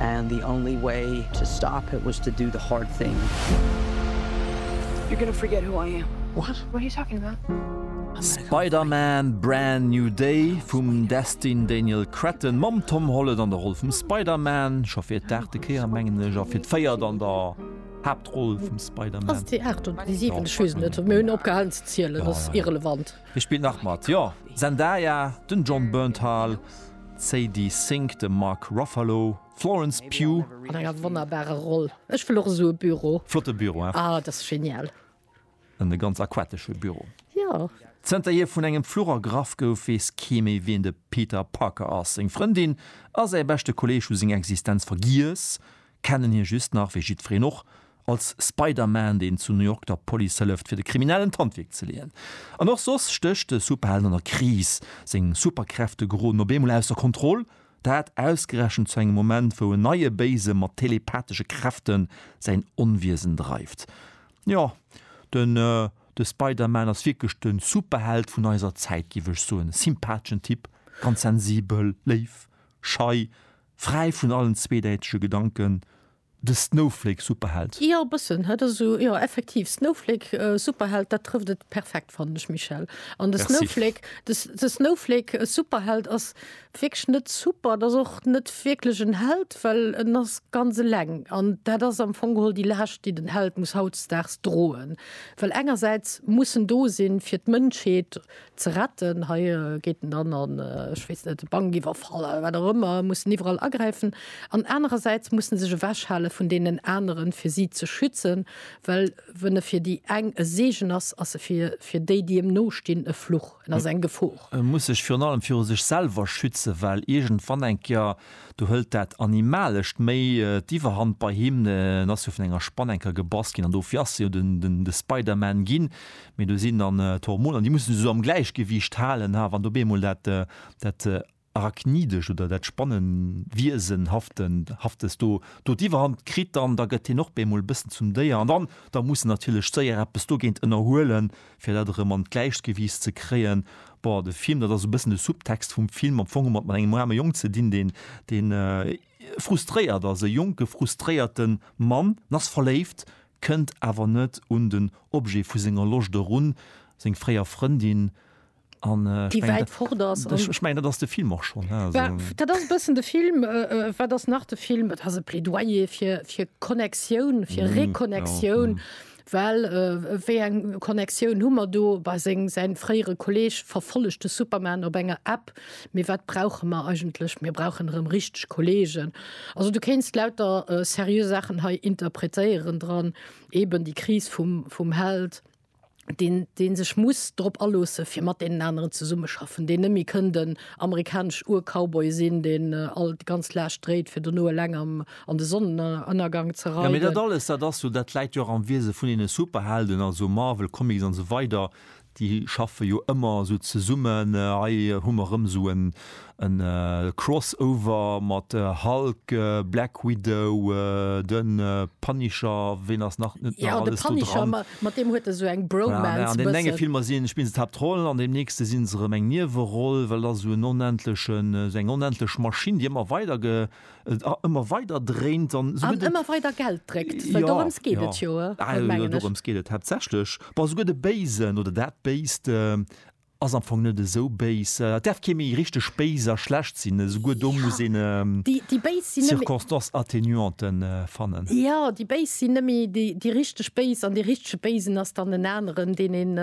And the only way to stop it was to do the hard thing. You're gonna forget who I am. What? What are you talking about? Spider-Man, Brand New Day vum Destin Daniel Cretton mam Tom Holland an der Roll vum Spider-Man, scho fir d'aachte Kéier mengen ech, a fir d'véiert an der Haaptroll vum Spider-Man. Ass et déi aacht oder déi siwent? Ech weess et net, mee hunn opgehalen ze zielen, ass irrelevant. Wie spillt nach mat? Jo, Zendaya, den Jon Bernthal, d'Sadie Sink, de Mark Ruffalo, d'Florence Pugh. An enger wonnerbare Roll. Ech wëll och esou e Büro. Flotte Büro, hein? Ah, dat ass genial. E ganz aquatesche Büro. Jo. Zënter hie vun engem Fluch ergraff gouf, weess kee méi, wien de Peter Parker ass. Seng Frëndin a säi beschte Kolleeg hu seng Existenz vergiess, kennen hie just nach, wéi jiddwereen och, als Spider-Man, deen zu New York der Police hëlleft, fir de Kriminellen d'Handwierk ze leeën. An och soss stécht de Superheld an der Kris. Seng Superkräfte geroden op eemol ausser Kontroll, dat ausgerechent zu engem Moment, wou en neie Béise mat telepathesche Kräfte säin Onwiesen dreift. Jo, den The Spider-Man ass wierklech de Superheld vun eiser Zäit, géif ech soen. Sympatheschen Typ, ganz sensibel, léif, schei, Fräi vun allen zweedäitege Gedanken, de Snowflake-Superheld. Jo, e bëssen huet e sou, jo, effektiv, Snowflake-Superheld, dat trëfft et perfekt, fannen ech, Michel. An de Snowflake, de Snowflake-Superheld ass wierklech net super, et ass och net wierklech en Held, well en ass ganz eleng. An dat ass am Fong geholl déi Laascht, déi den Held muss hautdesdaags droen, well engersäits muss en do sinn, fir d'Mënschheet ze retten. Hei geet en dann an, ech weess net, e Bank iwwerfallen oder wat och ëmmer, mussen iwwerall agräifen an anerersäits mussen sech ewechhale vun deenen aneren, fir si ze schützen, well wann e fir déi eng e Seegen ass, ass e fir déi, déi em nostinn, e Fluch, en ass eng Gefor. E muss sech virun allem viru sech selwer schützen, well iergendwann eng Kéier, do hëlt dat Animalescht méi d'Iwwerhand bei him, en ass jo vun enger Spann eng Kéier gebass ginn an dofir ass e jo de Spider-Man ginn, mee do sinn dann d'Hormoner, déi mussen se esou am Gläichgewiicht halen, ha, wann do op eemol dat, dat Arachnidescht oder dat Spannenwiesenhafte, haftes do, do d'Iwwerhand kritt, dann, da gëtt hien och op eemol e bëssen zum Déier an dann, da mussen natierlech d'Séier eppes dogéint ënnerhuelen, fir dat erëm an d'Gläichgewiicht ze kréien. Bon, de Film, dat ass e bëssen de Subtext vum Film, am Fong hu mer et mat engem aarme Jong ze dinn, deen, deen frustréiert ass, e jonke frustréierte Mann, en ass verléift, kënnt awer net un den Objet vu senger Loscht erun, seng fréier Frëndin, an ech mengen, dat ass de Film och schonn. Dat ass e bëssen de Film. Wat ass nach de Film? Et ass e Plädoyer fir Connectioun, fir Reconnectioun, well wéi eng Connectioun hu mer do? Säi fréiere Kolleeg verfollegt de Superman op enger App, Mee wat brauche mer eigentlech? Mir brauchen erëm richteg Kollegen. Also du kéinst lauter seriö Saachen hei interpretéieren dran, eben déi Kris vum, vum Held, deen, deen sech muss drop aloosse fir mat deenen aneren zesummeschaffen, deen net méi kënn den amerikanesch Ur-Cowboy sinn, deen all, déi ganz Laascht dréit fir dono eleng am, an de Sonnenënnergang ze reiden. Jo, mee dat alles, dat ass jo, dat läit jo och am Wiese vun deene Superhelden, also Marvel, Comics an esou weider. Déi schaffe jo ëmmer esou zesummen. Hei hu mer erëm esou e Crossover mat Hulk, Black Widow, de Punisher, ween ass nach net nach alles do dran? Jo, de Punisher, mat deem huet e sou eng Bromance e bëssen. An deenen enge Filmer sinn, spille se d'Haaptroll, an deem nächste sinn se erëm eng Nieweroll, well et ass esou en onendlechen, esou eng onendlech Maschinn, déi ëmmer weider ëmmer weider dréint an ëmmer weider Geld dréckt dorëms geet et jo dorëms geet et haaptsächlech bon esouguer de Béisen oder dat Béist ass am Fong net esou béis et däerf kee méi richteg béis a schlecht sinn esouguer do muss een déi béis sinn circonstances atténuanten fannen jo déi béis sinn net méi déi déi richteg béis an dee richtege Béisen ass dann en aneren deen een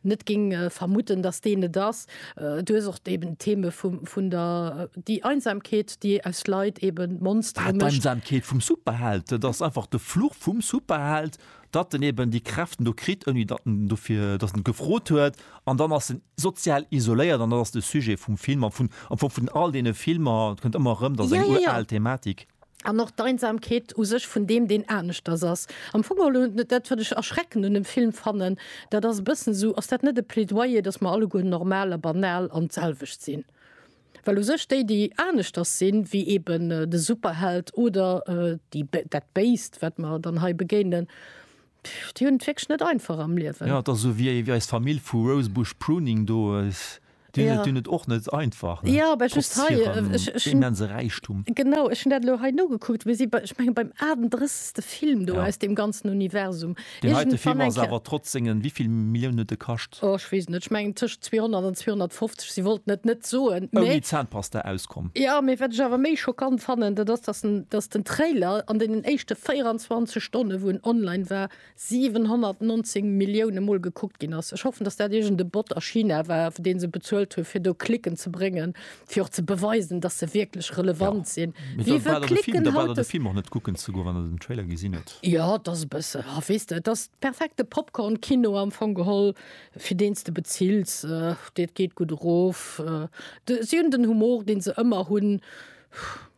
net géing vermudden datt deen et ass Äh, du hues och eben d'Theme vum, vun der, déi Einsamkeet, déi aus Leit eben Monstere Wat mécht. d'Einsamkeet vum Superheld, dat ass einfach de Fluch vum Superheld, datt en eben déi Kräften do kritt, ouni datt en dofir, datt en gefrot huet, an dann ass en sozial isoléiert. An dat ass de Sujet vum Film, am Fong, am Fong vun all deene Filmer, et kënnt ëmmer erëm, dat ass eng uraal Thematik. An och d'Einsamkeet u sech vun deem, deen aneschters ass. Am Fong geholl hunn, dat wat ech erschreckend un dem Film fannen, dat ass e bëssen esou, ass dat net e Plädoyer, datt mer alleguer normal a banal an d'selwecht sinn? Well u sech déi, déi aneschters sinn, wéi eben de Superheld oder déi, dat Béist, wat mer dann hei begéinen, Déi hunn et wierklech net einfach am Liewen. Jo, et ass esou wéi eis Famill vu Rosebush Pruning do, déi hunn et och net einfach, trotz hirem immense Räichtum. Genau, ech hunn dat elo hei nogekuckt, mir si bei, ech mengen, beim 38. Film do aus deem ganzen Universum. Deen heite Film ass awer trotz sengen, wéi vill Millioun huet e kascht? Oh, ech weess et net, ech mengen tëschent 200 an 250. si wollt net net soen méi Zahnpasta auskomm. Ja mee wat ech awer méi schockant fannen, dat ass dass en dass den Trailer an deenen éischte 24 Stonne wou en online war 719 Millioune mol gekuckt ginn ass. Ech hoffen dass dat iergend e Bot a China war fir deen se bezuelt hunn fir do Klicken ze bréngen fir och ze beweisen dass se wierklech relevant sinn. Wie wëll klicken haut de Film och net kucken ze goen wann en den Trailer gesinn huet. Jo et ass e bësse, ah weess de et ass perfekte Popcorn Kino am Fong geholl. fir deen s de bezills, dat geet gutt erof, si hunn den Humor, dee se ëmmer hunn,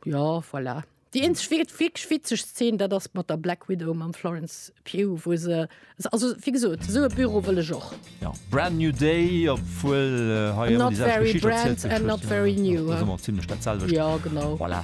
jo voilà. Déi eenzeg wierklech witzeg Szen, dat ass mat der Black Widow mam Florence Pugh, wou se, also wéi gesot, esou e Büro wëll ech och. Jo, Brand New Day, obwuel hei ëmmer déi selwecht Geschicht erzielt gëtt. Not very brand and not very new. Ass ëmmer zimlech dat selwecht. Jo, genau. Voilà.